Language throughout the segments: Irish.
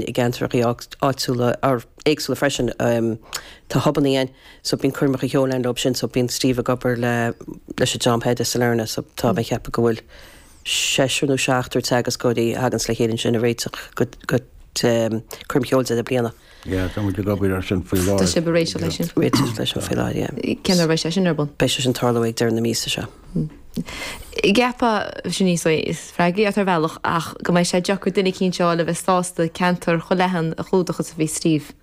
i gceantracha áitiúla or éagsúla freisin tá hubannaí ann so bíonn coirmeacha ceoil ann leob sin so bíonn Steve ag obair le leis an dream b'fhéidir i Sailearna so tá mé ag ceapadh go bhfuil seisear nó seachtar teagascóirí a thaganns le chéile ansin ag réiteach go go coirm cheoil deireadh bliana. Yeah tá muid ag obair ar sin faoi láthair. Tá sibh ag réiteach leis sin. Réiteach leis sin faoi láthair yeah. Cén uair a bheidh sé sin ar bun? Beidh sé sin ag tarlú ag deireadh na míosa seo. gceapfá, sin níos mó is freagraí ort ar bhealach ach go mbeidh sé deacair duine eicínt a fháil a bheas sásta ceantar chomh leathan a chlúdach is a bhí Steve.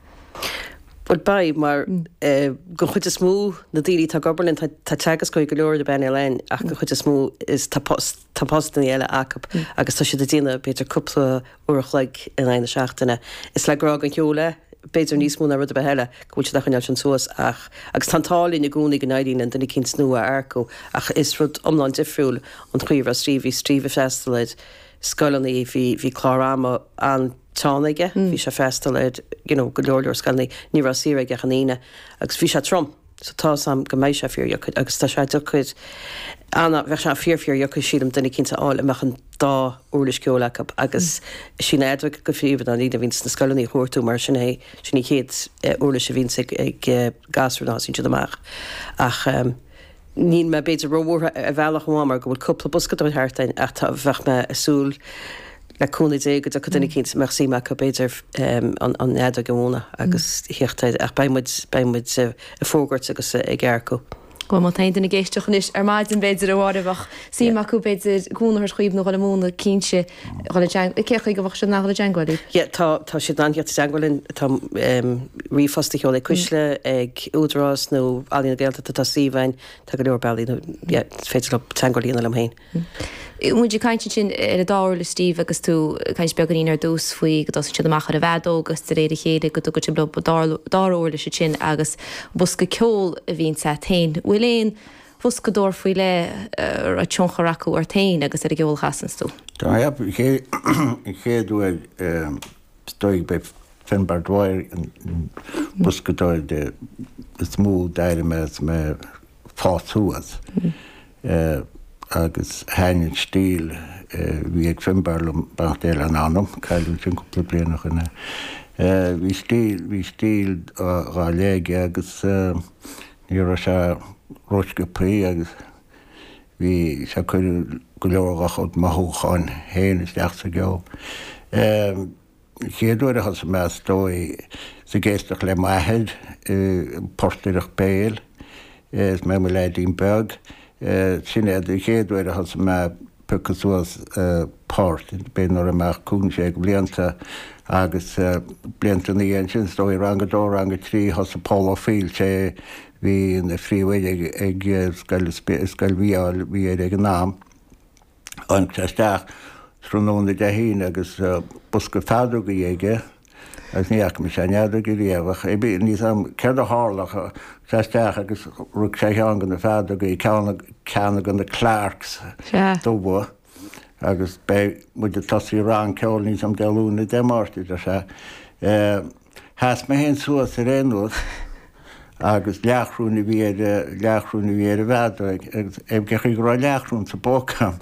Bhuel beidh, mar gon chuid is mó na daoine atá ag obair linn tá teagascóirí go leor ar phainéal a'inn ach gon chuid is mó is tá postannaí eile acub agus tá siad ag déanamh b'fhéidir cúpla uair a chloig in aghaidh na seachtaine. Is le grá gon cheol é, b'fhéidir níos mó ná rud ar bith eile, go bhfuil siad á choinneáil sin suas ach, agus tá an t-ádh linn i gcónaí go n-éiríonn linn duine eicínt nua a earcú ach is rud iomlán difriúil an chaoi a raibh Steve, bhí Steve ag freastal ar scoileanna, bhí, bhí clár ama an-teann aige, bhí sé ag freastal ar, you know, go leor leor scoileanna, ní raibh saor aige ach an Aoine agus bhí sé trom. So tá 's a'm go mbeidh sé fíor dheacair agus tá sé deacair ana, bheadh sé fíor fíor dheacair sílim duine eicínt a fháil a mbeadh an dá uirlis ceoil acu agus sí an fheadóg go príomha ná an líne a bhíonns na scoileanna a chuartú mar sin é, sin an chéad uirlis a bhíonns ag gasúir nuair a thosaíonn siad amach. Ach níl mé b'fhéidir ró-bhuartha ar bhealach amháin mar go bhfuil cúpla boscadóir thart a'inn ach tá, bheadh mé a' súil, le cúnamh Dé, go dtiocfaidh duine eicínt a mbeadh suim acu, b'fhéidir, an fheadóg a mhúnadh agus a thíocht air. Ach beidh muid, beidh muid ag fógairt agus ag earcú. Bhuel, má tá aon duine ag éisteach anois ar maidin, b'fhéidir, a Mháire, a bheadh suim acu, b'fhéidir, cúnamh a thabhairt dhaoibh nó dhul a mhúnadh, cinnte, dhul i dteang- cén chaoi go bhféadfadh siad a dhul i dteangmháil libh? Yeah, tá, tá siad in ann thíocht i dteangmháil linn. Tá ríomhphost a sheoladh ag Cuisle, ag Údarás nó Ealaín na Gaeltachta, tá suíomh a'inn, tá go leor bealaí nó, yeah, is féidir leo teangmháil a dhéanamh liom féin. Bhí muid ag caint ansin ar an dá uirlis, Steve, agus tú ag caint beagáinín ar dtús faoi go dtosaíonn siad amach ar an bhfeadóg agus de réir a chéile go dtugann siad leo an dara uirlis ansin agus bosca ceoil a bhíonns a't féin. Bhfuil aon bhoscadóir faoi leith a raibh tionchar acu ort féin agus ar an gceol a chasanns tú? Tá, yep. An chéad uair is dóigh b'é Finbarr Dwyer an boscadóir is mó d'éist mé leis. fás suas. Agus thaitin an stíl a bhí ag Finbarr liom beannacht Dé lena anam, cailleadh ansin cúpla bliain ó shoin é. Bhí stíl, bhí stíl ar leith aige agus ní raibh sé rósciobthaí agus bhí sé ag cur go leor dhá chuid mothúcháin féin isteach sa gceol. an chéad uair a thosaigh mé is dóigh ná ag éisteacht le m'athair ag portaireacht béil is mé i mo leaidín beag. Sin é an chéad uair a thosaigh mé ag piocadh suas poirt, b'fhéidir nuair a bhí mé cúig nó sé de bhlianta. Agus blianta ina dhiaidh sin, is dóigh rang a dó, rang a trí, thosaigh Pól Ó Foighil, sé a bhí ina phríomhoide ag scoil Mhícheáil Uí Eithir ag an am, Tháinig sé isteach tráthnóna Dé hAoine agus bosca feadógaí aige agus ní fhaca mise aon fheadóg riamh ach ar bith, níl a fhios 'am céard a tharla ach tháinig sé isteach agus thug sé dhom ceann de na feadógaí, ceann de na Clarks dubha agus beidh muid ag tosú rang ceoil níl a fhios 'am Dé Luain nó Dé Máirt, a deir sé. Chas mé fhéin suas ar aon nós agus leathchoróin a bhí ar leathchoróin a bhí ar an bhfeadóig agus b'aisteach go raibh leathchoróin sa bpóca 'am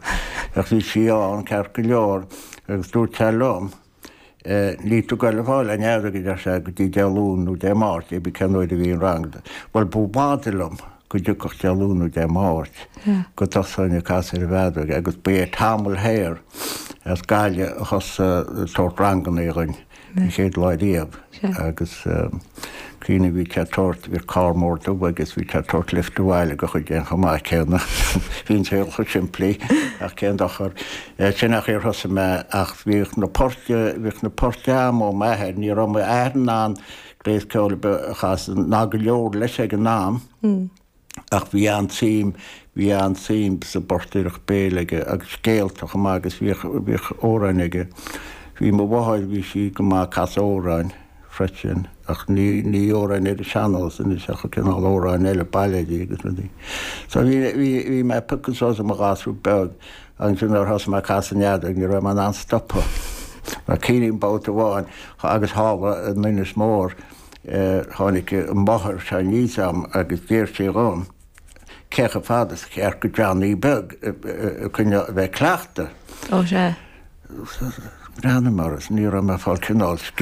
ach bhí sí ann ceart go leor agus dúirt sé liom Níl tú ag goil a fáil an fheadóig a deir sé go dtí Dé Luain nó Dé Máirt pé bith cén uair a bhí an rang do. Bhuel b'fhada liom go dtiocfadh Dé Luain nó Dé Máirt go dtosóinn ag casadh ar an bhfeadóig agus bhí sé tamall thoir as Gaillimh a thosaigh sórt ranganna againn. An chéad lá riamh agus cuimhním bhí sé ag tabhairt bhí carr mór dubh aige agus bhí sé ag tabhairt lift abhaile go chuile dhuine chomh maith céanna. Bhí an saol chomh simplí ach cén dochar sin an chaoi ar thosaigh mé ach bhíodh na poirte bhíodh na poirte 'am ó m'athair ní raibh m'athair in ann gléas ceoil a chasadh ná go leor leis ag an am. Ach bhí an-tsuim, bhí an-tsuim sa bportaireacht béil aige agus scéalta chomh maith agus bhíodh, bhíodh amhráin aige. Bhí mo mháthair, bhí sí go maith ag casadh amhráin freisin ach ní, ní amhráin ar an sean-nós anois ach cineál amhráin eile, bailéidí agus rudaí. So bhí, bhí, bhí mé ag piocadh suas i mo ghasúr beag ansin nuair a thosaigh mé ag casadh na feadóige, ní raibh mé in ann stopadh. Mar cuimhním babhta amháin agus tharla mé in Inis Mór, Tháinig máthair sall anseo 'am agus d'iarr sí dhíom cé chomh fada is ceart do Johnny beag a choinneál a bheith ag cleachtadh. Breathnaigh mar is ní raibh mé ag fáil cineál scil.